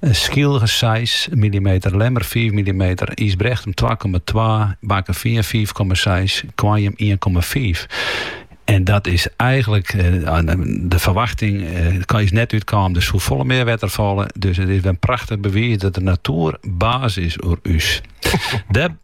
In Skylge seis millimeter, Lemmer fiif millimeter, Ysbrechtum twa komma twa, Bakkefean fiif komma seis, Koarnjum ien komma fiif. En dat is eigenlik eh, de ferwachting eh, is net útkommen. Der soe folle mear wetter falle. Dus it is wer in prachtich bewiis dat de natoer baas is oer ús.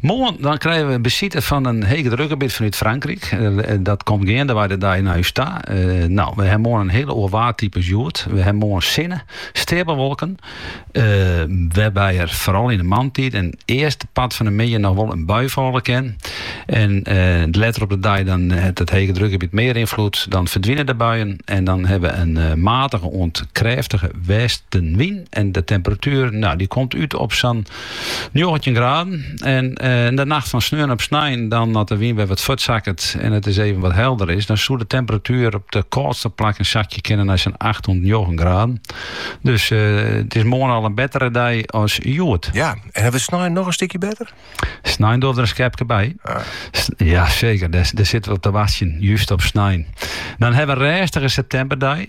Moarn dan krije we besite fan in hegedrukgebiet fanút Frankryk. Eh, eh, dat komt geandewei de dei nei ús ta. Eh, nou, we hawwe moarn in hiel oar waartype as hjoed. We hawwe moarn sinne, steapelwolken, wêrby't der foaral yn de moarntiid en earste part fan de middei noch wol in bui falle kin. En letter op de dei dan hat it hegedrukgebiet mear ynfloed. Dan ferdwine de buien en dan hawwe we in matige oant krêftige westewyn. En de temperatuer, nou, dy komt út op sa'n Njoggentjin graden en yn de nacht fan sneon op snein dan as de wyn wer wat fuortsakket en it is even wat helder is, dan soe de temperatuer op de kâldste plakken sakje kinne nei sa'n acht oant njoggen graden. Dus it is moarn al in bettere dei as hjoed. Ja, en hawwe we snein noch in stikje better? Snein docht der in skepke by. Ja seker, dêr sitte we op te wachtsjen, just op snein. Dan hawwe we in rêstige septemberdei.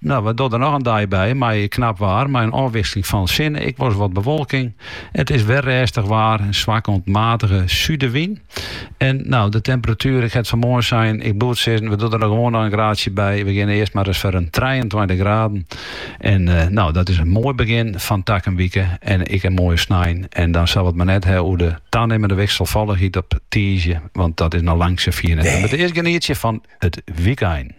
Nou, we do der noch in dei by mei knap waar mei in ôfwisseling fan sinne. Ek wolris wat bewolking. It is wer rêstich waar, in swakke oant matige súdewyn. En nou, de temperatuer, ik ha it fanmoarn sein, ik bliuw't sizzen, we do der gewoan noch in graadsje by. We geane earst mar ris foar in trijeëntweintich graden. En nou, dat is in moai begjin fan takom wike en ek in moaie snein. En dan sille we it mar net hawwe oer de tanimmende wikselfallichheid op tiisdei, want dat is noch lang sa fier net. We moatte earst genietsje fan it wykein.